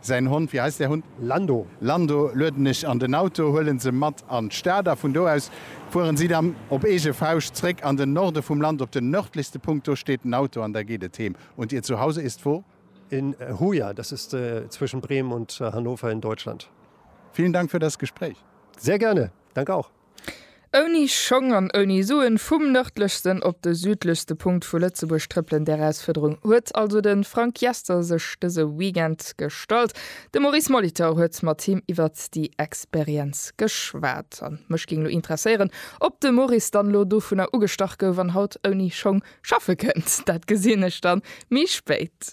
Säin Hond, wéi heist där Hund? Lando. Lando lueden ech an den Auto, huelen se mat an d'Stad a vun do aus fueren si dann op eege Fauscht zréck an den Norde vum Land op den nördlichste Punkt. Do steet den Auto an da geet et heem. Und Ihr Zuhause ist wo? In Hoya, das ist zwischen Bremen und Hannover in Deutschland. Vielen Dank für das Gespräch. Sehr gerne. Danke auch. Ouni Schong an ouni Suen, vum nërdlechsten op de südlechste Punkt vu Lëtzebuerg trëppelen, där Erausfuerderung huet also de Frank Jester sech dëse Weekend gestallt. De Maurice Molitor huet mat him iwwer déi Experienz geschwat. A mech géing elo interesséieren, ob de Maurice dann elo dovunner ugestach gouf an haut ouni Schong schaffe kënnt. Dat gesinn ech dann méi spéit.